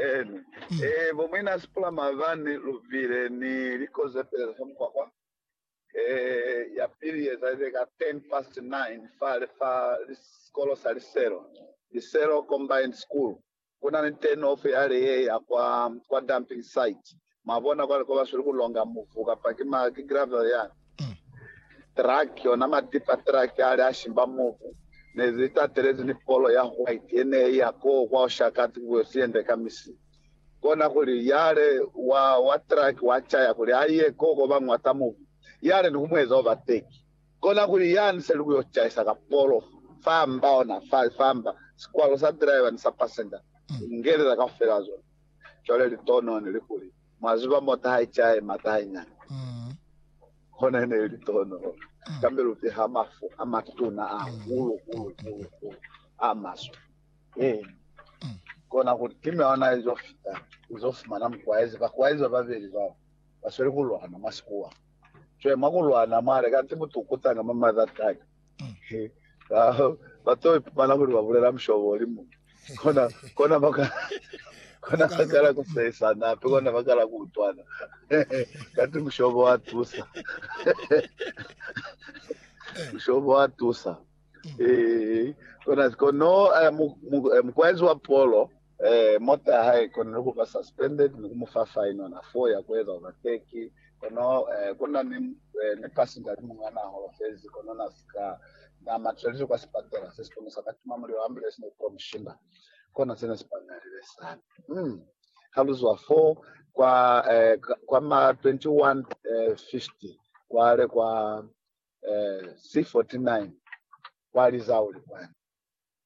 Eni. Mm. E, eh, bo mwina sipula mavani luvile ni likoze pele sa mkwakwa. E, eh, ya pili yeza ile ka 10 past 9 fa le fa sikolo sa Liselo. Liselo Combined School. Kuna ni turn off ya le ye ya kwa kwa dumping site. Mwabona? Cwale, koba sweli ku longa muvu, kapa ki ma, ki gravel yani, truck, ona ma tipper truck ali a shimba muvu, ne li tatelezi ni polo ya white ye ne iya koo kwa oshakati ku kuyo siyende ka misi. Kona kuli, yale wa, wa truck wa caya kuli a ye koo ko ba nwata muvu, yale ni ku mu eza overtake. Kona kuli, yani se li kuyo caisa ka polo fa mba, ona, fa, fa mba, sikwalo sa driver ni sa passenger, ku ngelela kaufela zona. Cwale litono ne li kuli, mwa ziba, mo taha icaye mata hainyani, kona e ne li litono, kambe lu piha mafu a matuna ahulu, hulu, hulu, hulu, a maswe. Eena. Kona kuli, ki miona ye zo fita, u zo fumana mukwaezi, bakwaezi ba babeli bao, ba sweli ku lwana mwa sikuwa. Cwale mwa ku lwana mwale, kanti butukutanga mwa mazazi aka, ba to ipumana kuli ba bulela mushobo oli mu kona kona baka kona bakala kusesana ape kona bakala kuutwana kati mushobo wa tusa mushobo wa tusa eh kona kono eh, mukwenzi wa polo Ee, mota ya hae i konile ku ba suspended ni ku mu fa fine ona fo ya ku eza overtake. Kono eh, ku na ni, eh, ni passenger ni muñ'a n'a holofezi, kono n'a si ka n'a matlelizwe kwa sipatela se si kono sa ka tima mulilo. Ambulance ne i ko mu shimba. Kona se ne si pañalile sana. Mm. Ha lu zwa fo kwa, eh, ka- kwa ma 2150 kwale kwa eh, C49 kwa Lizauli kwani.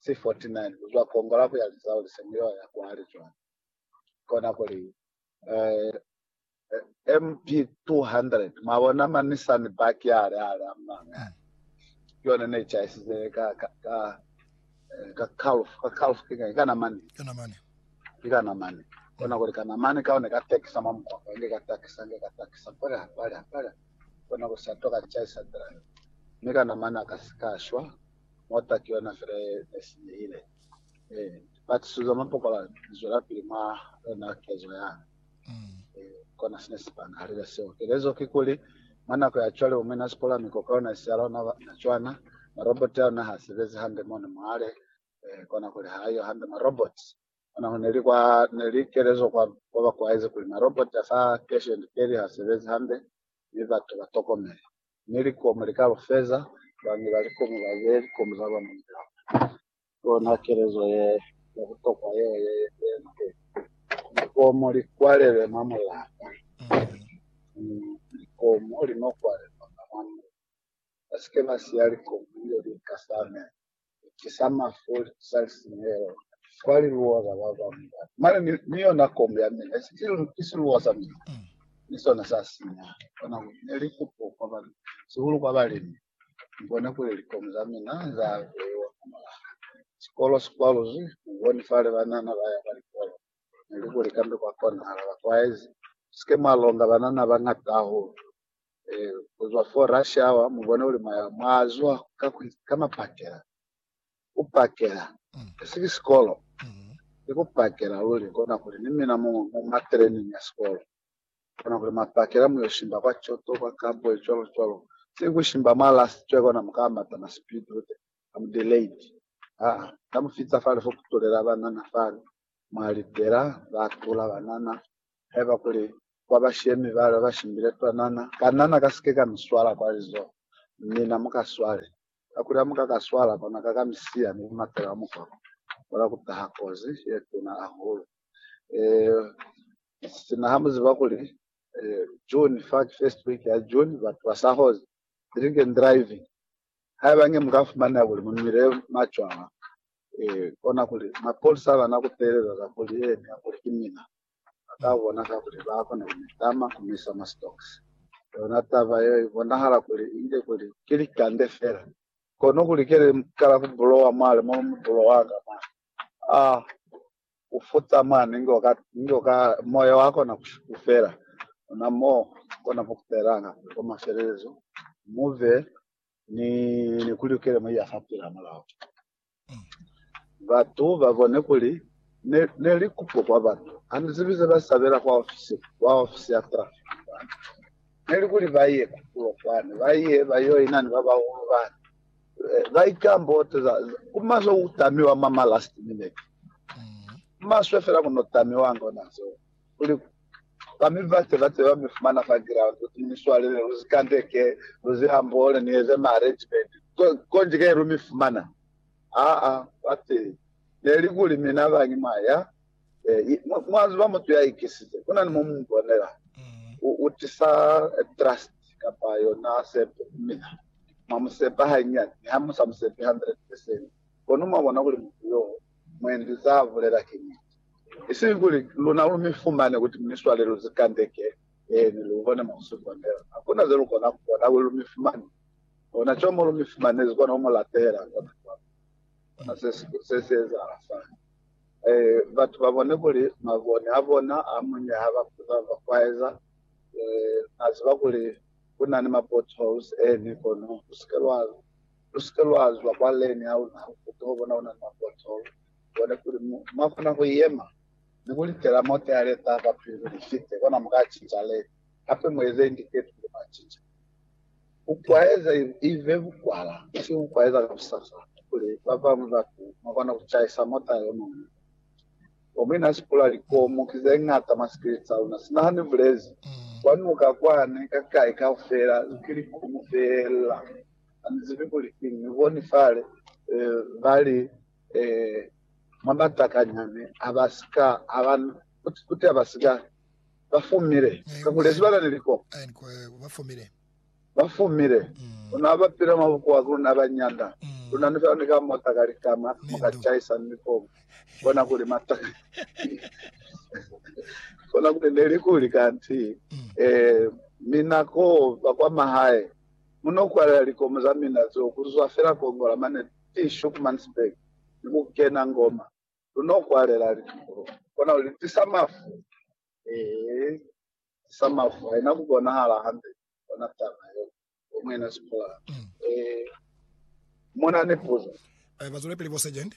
si 49 lu zwa kongola ku ya lizao li se muyo ya kwale cwale kona kuli eh, eh, mb 200 mwabona ma nissan back ya le ale amanga yone ne chaisize ka ka ka eh, ka calf ka calf kinga kana mani kana mani kana mani kona kuli kana mani kaone ka tekisa mwa mkwako nge ka takisa nge ka takisa pala pala pala kona kusatoka chaisa drive nika namana kasika shwa mota ki yona fela ye ne sinyehile. E, lipatiso za mapokola li zwelapili mwa yona kezo ya ka. E, kona sine si panahalile seo. Kelezo kikuli, mwa nako ya cwale bo mina sipola mi koka yona isi ya lona na cwana, maroboti a lona ha sebezi hande mo ne mwale. E, kona kuli ha yo hande maroboti. Ona ho neli kwa, neli kelezo kwa, kwa bakuaize kuli maroboti a sa keshe likeli ha sebezi hande, mi batu ba tokomele. mi likomu likalufeza bañi ba likomu ba be likomu za lona ni lapa. Ki yona kelezo ye ya butokwa yeo ye yenzile likomu li kwalelwe mwa mulapa. Mi likomu li no kwalelwa nga mwa mutu. Ba si ke ba siya likomu li yo li ikasamela. ki sa mafu sa lisinyehelo kwa liluwa za ba bañwi bana. Mane ni, ni yona kombo ya mina, ki siluwa sa mina, ni sona sa sinya. Kona kuli ne li kupo kwa ba, sihulu kwa balimi. Ni bone kuli likomu za mina za beiwa hamulaho. Sikolo si kwaluzwi, ni boni fale banana ba ya kwa likolo. Ne li kuli kambe kwa konahala, bakwaezi, mu si ke mwa longa banana ba ñata hahulu. eh, kuzwa for rush hour mubone uli mwaya mwazwa ka, ka mapakela kupakela mm. esiki sikolo ikupakela mm. luli kona kuli ni mina mu, mu matraining ya sikolo kona kuli mapakela muyoshimba kwa choto kwa kambo chwalo chwalo sikushimba mwa last chwe kona mukamata ma speed ute am delayed ah tamufitsa fale fo kutulela banana fale mwalitela batula banana heba kuli kwa bashemi bale ba shimbile twanana, kanna na ka si ke ka mi swala kwa lizoho. Mi na mu ka swale, kakuli ha mu ka ka swala, kona ka ka mi siya ni ku matela mukwako, kona ku taha kozi ye tuna hahulu. Eeh, sina ha mu ziba kuli, eh, June fa, ki first week ya June, batu ba sa hozi drink and driving. Haiba nge mu ka fumaneha kuli mu nwile macwala, eh, kona kuli mapolisa ba na ku teeleza kakuli, eh, kakuli ki mina. Ba ka bona kakuli ba kona ku mi tama ku mi isa mwa stocks. Yona taba yeo i bonahala kuli i nge kuli ki likande fela. Kono kuli ke li kala ku bulowa mwale mo mi bulowa ka mane, a u futa mane inge u ka, inge u ka, moya wa kona ku shukufela. Ona mo u kona ku kupelanga kuli kwa mafelelezo mu be ni, ni ku lukele mo i ya fa pilamulaho. Batu ba bone kuli ne, ne li kupo kwa batu. Ha ni zibi ze ba sabela kwa ofisi, kwa ofisi ya traffic kwani. Ne li kuli ba ye kupulo kwani, ba ye ba yo ina ni ba bahulu bani. Eh, ba ikamboteza ku maswe ku tamiwa mwa ma last minute. Ku maswe fela ku no tamiwanga ona zeo. kuli ba mi ba se ba se ba mi fumana fa ground kuti ni swalele lu si kandeke, lu si hambole, ni eze ma arrangement ko, konji ke lu mi fumana. Aa, ba ti, Ne li kuli mina ba ngi mwa ya, eh, i, mwa, mwa ziba mutu ya ikisize, ku na ni mo mu mu bonela, u, u tisa eh, trust kapa yona sepo ku mina. Mwa mu sepa hanyiani, mi ha mu sa mu sepi 100%, kono mwa bona kuli mutu yo, mwendi za bulela ki niti. Isiñi kuli luna lu mi fumane kuti mi swalelwe zikandeke, eeni, lu kone mo ku si konela. Hakuna ze lu kona ku bona kuli lu mi fumane, ona cwale mo lu mi fumanezi kona ku mu lapela. Ona cwale, ona se se si ezahala fani. Ee, batu ba bone kuli mabone a bona a muñwi ha ba kuta ba kwaeza, ee, na ziba kuli ku na ni ma potholes, eeni, kono lu si ke lwa, lu si ke lwa zwa kwa lane ya luna ha lu kuta, lwa bona ku na ni ma pothole. Kone kuli mu, mwa kona ku yema ni ku litela mote ya leta kwa pilu li fite, kona mu ka cinca leli. Hape mu eze indiketi kuli mwa cinca. Ku kwaeza ive bukwala, ki ku kwaeza ka busasa kuli ba bañwi batu mwa kona ku cahisa mota yo muñwi. Bomwina ha si pula likomu ki ze ñata mwa sikiliti sa luna, sina ha ni bulezi, kwa nuka kwani, ka kai kaufela, ki likomu feela. Ha ni zibi kuli kiñi. Ni boni fale, ba li. Ee, mwa matakanya ne a ba si ka a ba, kuti a ba si ka, ba fumile, kakuli sibaka ne liko. Ba fumile. Ba fumile. Luna ha ba pila mwa bukuwa ku luna ba nyanda. Luna ni fela ni ka mota ka likama, mu ka caisa ni ko bona kuli matakanya. Kona kuli ne li kuli kanti, ee, mina ko ba kwa mahae, mu no kwalela likomo za mina zeo ku zwa fela Kongola mane Ki Schoenemannsberg ni ku kena ngoma. Lu no kwalela litukulo. Kona li tisa mafu. Ee, tisa mafu. Haina ku bonahala hande kona taba yeo. Bo Muena Sproul. Ee. Mu na ni puzo? Ba zwele pili, bo Sergeant.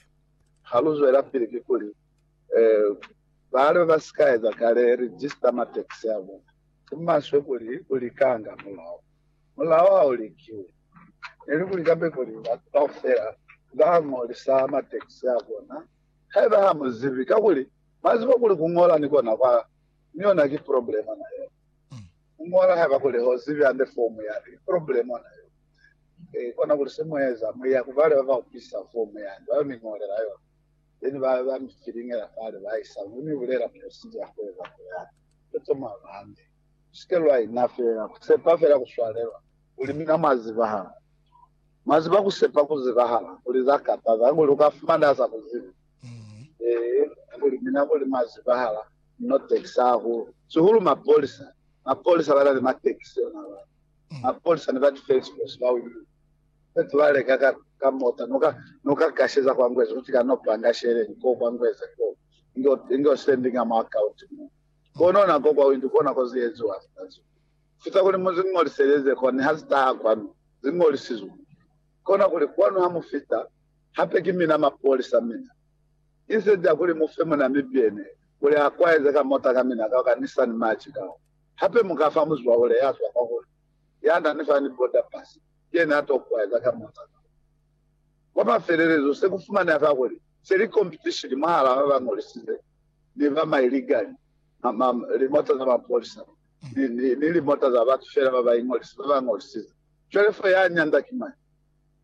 Ha lu zwela pili, kikuli, ee, bale ba si ka eza kale register ma taxi a bona. Ki maswe kuli ku likanga mulao. Mulao ha u likiwi, nelikuli kabekuli batu kaufela ba ngolisa mateksi a bona haiba ha mu zibi, kakuli mwa ziba kuli ku ngola ni kona kwa ni yona ki problemo na yona. Ku ngola haiba kuli ho zibi hande fomu yani, ki problemo na yona. E, kona kuli se mu eza, mu ya ku bale ba ba upisa fomu yani, ba yo mi ngolela yona, then ba, ba mi filingela fale, ba isa, mi mi bulela procedure ya ku eza ku yani. Toto mwa ba hande. Sike lwa ina fela ku sepa fela ku swalelwa kuli mina mwa zibahala. Mwa ziba ku sepa ku zibahala kuli za kataza kuli uka fumana sa ku zibi. Ee, kuli mina kuli mwa zibahala no taxi hahulu. Sihulu mapolisa. Mapolisa bana ni mataxi ona ba. Mapolisa ni ba defense force ba wili. Fetu ba leka ka, ka mota noka noka kasheza kwa ngweza kuti ka no panga shele ko kwa ngweza ko. Ingo ingo sendinga mwa account mo. Kono nako kwawinti kona ko ze eziwa ka zo. Fita kuli mu zi ñoliseleze kwani ha zi taha kwanu, zi ñolisizwe. Kona kuli kwanu ha mu fita, hape ki mina mapolisa mina. Instead ya kuli mu fe muna mibyene kuli a kwaeze ka mota ka mina kao ka Nissan March kao, hape mu ka fa muzwahule ya zwa kwa kuli, ya na ni fa ni border pass, ki yena a to kwaeza ka mota kao. Kwa mafelelezo, se ku fumaneha fa kuli, Se li kompitishini mwahal'a ba ba ñolisize ni ba mailigani, limota za mapolisa, ni limota za batu fela ba ba iñolisa, ba ba ñolisize. Cwale fo ya nyanda ki mañi?